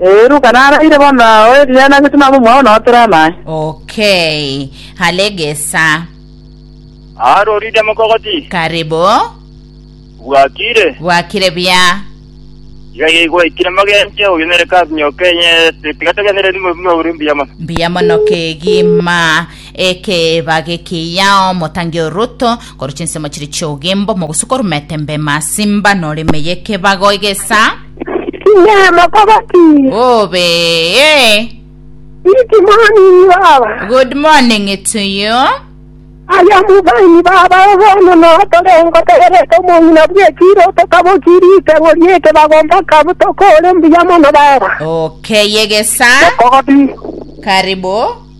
Ee, Luka naraire bono nao eriana agete nabo omwao nao tera naye. Okay. Halegesa. Arorire mokogoti. Karibu. Bwakire. Bwakire bia. Iga iga igwaikire mogenche oyo nere kasi nyoka enye tiga togenere rimo bimo uri mbuya mono. Mbuya mono kegima ekeba gekiyao motangi oruto koru chinsemo chiri chiogimbo mogusuka orumete mbema simba nore meye kebago egesa. Inee, mokoba ki? Obe. Iti mwanini baba. Good morning to you. Aya mubaini baba bono notorengo tegerete omong'ina bw'ekiro tokaboki riteng'o ri'ekebago mpaka butokore mbuya mono baba. Okay, yegesa. Mokoba ki? Karibu.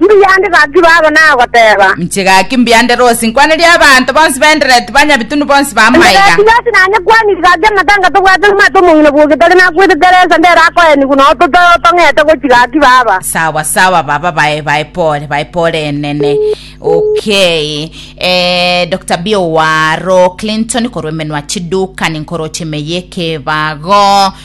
Mbiyande gaki baba nagoteeba. Inche gaki mbiyande Rosi nkwanerie abanto bonsi b'Endereti banyabitunu bonsi ba maiga. Endereti Rosi nanyekwaniri gaki amatanga tobwate omwete omong'ina bw'ogetari nakwete Teresa ndere akoenigwa na ototo otong'ete gochia gaki baba. Sawa sawa baba bae bae pore bae pore enene okay eh, Dr. Bio waro Clinton korwa emenwa chidukani nkoroche emeye ekebago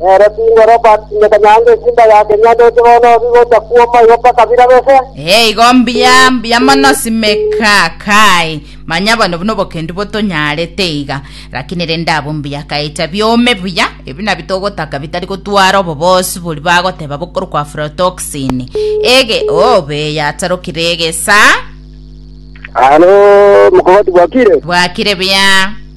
Nere Bingo Robert Nyakanyaga esimba ya Kenya ndoche bono obi gocha kuoma igo mpaka bira bese. Ee, igo mbuya mbuya mono simeka kae manya bono obu nobokendu botonyarete iga lakini rende abo mbuya kaecha biome buya ebi nabio togotaka bitari gotwara obobosu bori bagoteba bokorokwa aflatoxin ege obe yatarokire egesa Alo, mokogoti bwakire? bwakire buya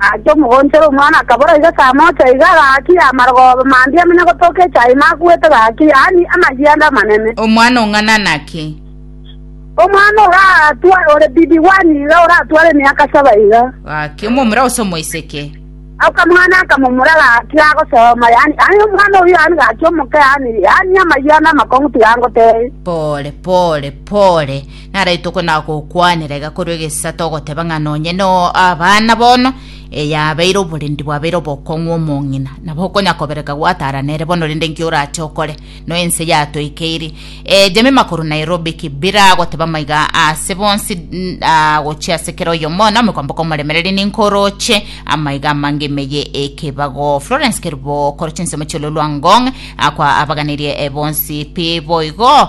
Naende omogonchere omwana akabora iga saa mocha iga, gaki y'amarogoba mandia amanya gotooka echaai makuete gaki, yaani amayianda amanene. Omwana o ng'ana nake? Omwana oratwa ore bibi one iga oratware emiaka saba iga. Gaki omomura gose omoiseke? Okamwana akamomura gaki agosoma, yaani yaani omwana oyio yaani gaki omoke yaani yaani amayianda amakong'u tiga angotee. Pore pore pore. Naraitokwe nagokwanera iga korwa egesato ogoteba ng'a nonye no abana bono eyabeire oborendi bwabeire obokong'u omong'ina nabo okonya kobereka gwatara nere bono rende nki orache okore no ense yatoikeiri e jemima korwa Nairobi kibira agoteba maiga ase bonsi n- ah, gochia ase kera oyo mono amekwamboka omoremereri ninkoroche amaiga amange emeye ekebago Florence Kerubo koroche nsemo chiololwa ngong akwa abaganirie e bonsi pi boigo